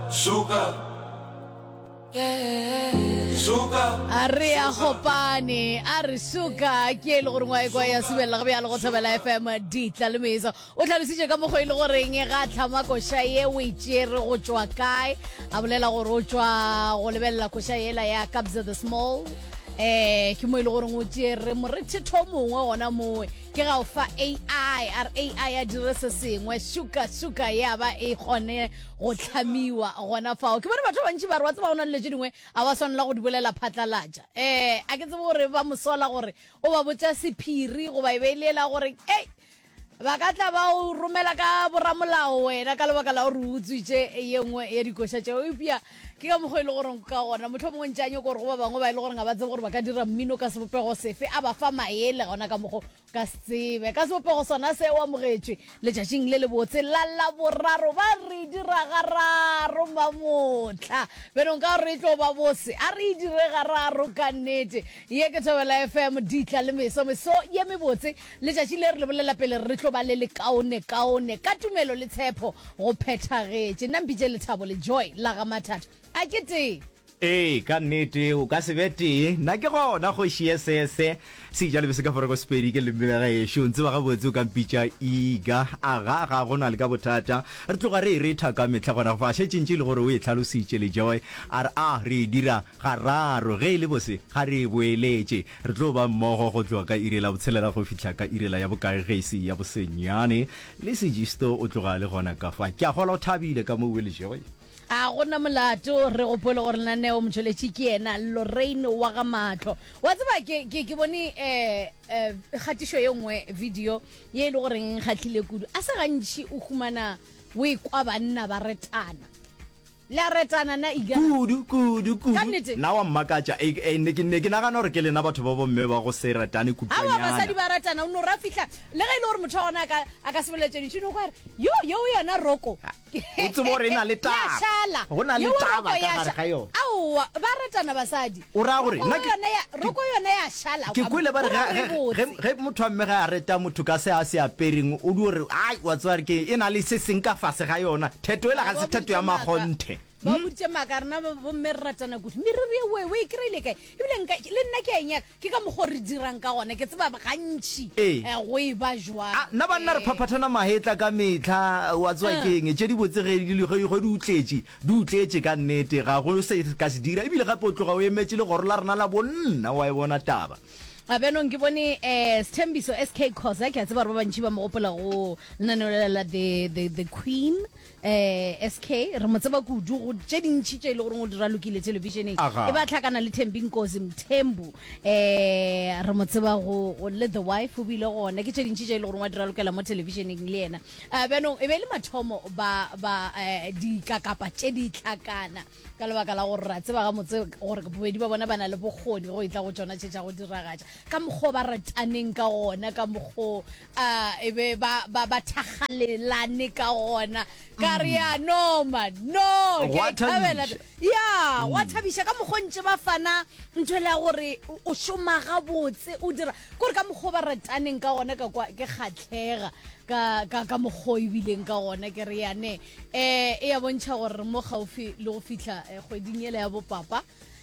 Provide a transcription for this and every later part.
Suka. Suka. a re a gopane a re suka ke e le gore ngwae kwa ya subelela go bjalo go thobela fm ditla le meso o tlhalositše ka mokgwa e le goreng ga a tlhama koša ye o e tšere go tšwa kae a bolela gore o tšwa go lebelela koša yela ya kabza the small eh ke mo e le goreng o tšere morethetho mongwe gona mowe ke ga o fa ai a re ai a dire se sengwe suka suka ya ba e kgone go tlhamiwa gona fao ke bone batho ba bantši ba re wa tseba go na le dilo tše dingwe a wa swanela go di bolela phatlalatša um a ke tsebe gore ba mosola gore o ba botša sephiri goba e be e le ela gore ei ba ka tla ba o romela ka boramolao wena ka lebaka la gore o utswitše ye nngwe ya dikoša tšeo eupša ke ka mokgwa e le goreng ka gona motlho mongwe ntše a nyoko gore go ba bangwe ba e le goreng ga ba tsebe gore ba ka dira mmino ka sebopego sefe a ba fa maele gona ka mokgwa Ka se tsebe. Ka sebopego sona se, o amogetšwe letšatšing le lebotse la Laboraro. Ba re dira gararo mamohla. Beno, nka gore e tlo ba bose. A re e dire gararo ka nnete. Ye ke Thobela FM, Ditla le Meso. Meso ye mebotse. Letšatši le re le bolela pele re tlo ba le lekaone kaone. Ka tumelo le tshepo go phethagetše. Nna mpitše Lethabo le Joy la ga Mathata. A ke tee? Ee, ka nnete, o ka se be tee. Nna ke gona kgoši ye sese. Sejalebe se ka forego Sepedi ke leleme la gaešo. O ntseba gabotse o ka mpitša Iga. Aga, ga go na le ka bothata. Re tloga re e retha ka mehla gona go fa. Šetše ntše e le gore o e hlalositše le Joy. A re a re e dira gararo. Ge e le bose, ga re e boeletše. Re tlo ba mmogo go tloga ka iri la botshelela go fihla ka iri la ya bokae ge e se ya bosenyane. Le Sigisto o tloga a le gona ka fa. Ke a kgolwa o thabile ka mo o le, Joy? A go na molato, re gopole gore lenaneo motšweletši ke yena Lorraine wa ga Maatlo. Wa tseba ke, ke, ke bone um um kgatišo ye nngwe video ye e le goreng e nkgahlile kudu. A se gantši o humana o e kwa banna ba retana. Le a retana na Iga? Kudu, kudu, kudu. Ka nnete. Na wa mmakatša. E, e, ne, ke, ne ke nagana gore ke lena batho ba bomme ba go se ratane Awa, kutšwanyana. basadi ba ratana, o no ra fihla, le ge e le gore motho wa gona a ka, a ka se boletše dintšhi, o no kwa re, Yo, yo o yona Roko. o tseba gore e na le taba ya šala go na le taba ka gare ga yone aowa ba ratana basadi o ra gore nna roko yone ya šala ke kwele ba re ge ge motho wa mme ga a reta motho ka se a se apereng o di gore ai wa tseba ke e na le se seng ka fase ga yona theto e la ga se theto ya magonthe ba hmm? boditse maaka rena bomme re ratana kudu mme re reye wewe e kry-ile kae ebile le nna ke a enyaka ke ka mokgwa re dirang ka gone ke tseba gantšhi eh. Eh, go e ba jwang ah, nna banna re eh. phaphathana magetla ka metlha wa tsewa ke eng tse di botse ge di utletše di utletše ka nnete ga go se ka se dira ebile gape o tloga o emetse le goro la rena la bonna wa e bona taba abenong ke bone um sethembiso s k cosa ke a tseba gore ba bantšhi ba mogopola go lenaneo la the queen Eh, SK, re mo tseba kudu go tše dintši tše e le goreng o di ralokile televisioneng. Aga. E ba tlhakana le Thembi Nkosi Mthembu. Eh, re mo tseba go go le The Wife o bile gona ke tše dintši tše e le goreng wa di ralokela mo televisioneng le yena. Eh, bjanong e be e le mathomo ba ba eh, dikakapa tše di tlhakana ka lebaka la gore ra tseba gamotse gore bobedi ba bona ba na le bokgoni go e tla go tšona tše tša go diragatša ka mokgwa o ba rataneng ka gona ka mokgwa o, a e be ba ba ba thakgalelane ka gona ka re ya no man no ke Gwa a ithabela thabiša. ya wa thabiša ka mokgwa o ntše ba fana ntho le ya gore o- o šoma gabotse o dira kore ka mokgwa o ba rataneng ka gona ka kwa ke kgatlhega ka ka ka mokgwa o ebileng ka gona ke re yane um e ya bontšha gore re mo gaufi le go fitlha eh, kgweding ele ya bopapa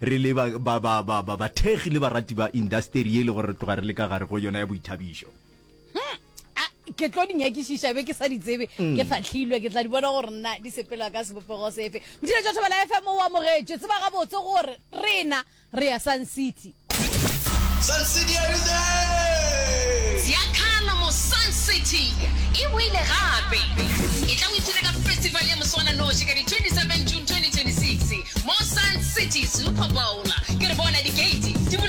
Re le ba, ba, ba, ba, ba, bathekgi le barati ba indasteri ye e lego re tloga re le ka gare go yona ya boithabišo. Hm, a, ke tlo di nyakišiša, be ke sa di tsebe. Ke fahlilwe, ke tla di bona gore na di sepela ka sebopego sefe. Motšheletši wa Thobela FM o amogetše. Tseba gabotse gore rena re ya Sun City. Sun City every day! Sia Kgalamo Sun City e boile gape. Etla o ithute ka festival ya moswananoši ka di 27 June. 2026 mo Sun City Super Bowl. Ke re bona dikeiti di bula.